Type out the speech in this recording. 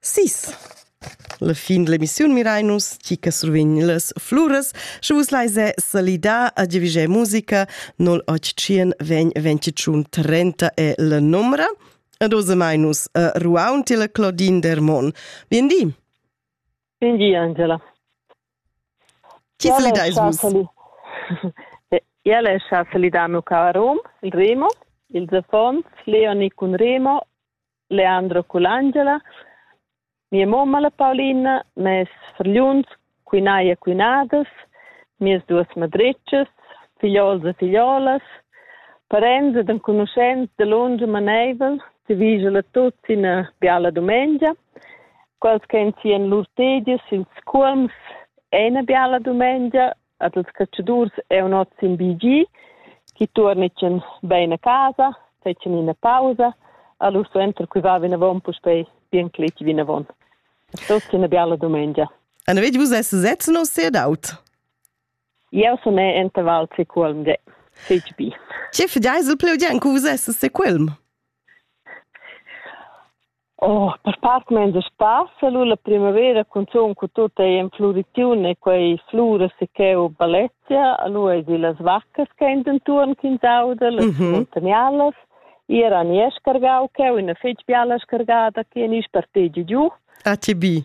Sis. La fin l'emissiun mirain nus chi che survegn las fluras, sche vus lais salidar a Divigé Musica 081 vegn 25 30 è la numera. Ed osamai nus a Ruaun tila Claudine Dermon. Bien di. Bien di, Angela. Chi salidais vus? Iale è scha salidano ca a Rom, il Remo, il Zefons, Leoni cun Remo Leandro Culangela, mia mamma la Paulina, mes fargliuns, quinai e quinadas, mias duas madretschas, figliols e figliolas, parents ed enconuschents da lunga maneivel, ti vigel a tutti ina biala dumengia, quals che en sien lur tegias ils culms, è una biala dumengia ad els catschadurs è un ot sin BG, chi tuornetschen bein a casa, fetschen ina pausa, allora suenter qui va vinavon puspei bien cletg vinavon. Tot una bella domenica. Anna vedi vus es setzen o sehr daut? Eu sun enta Val Seculm de CGB. Ce fidai se pleu gen cu vus es seculm? Oh, per part menza spassa lu la primavera cunzun cu tut ei en fluriziun e quei fluras e cheu balezia, lu ei di las vaccas che ein dentuon ch'ins auda, las mm -hmm. muntanialas, era ni è scargau cheu ina fetg biala scargada che ni spartegi giu. A ti bi.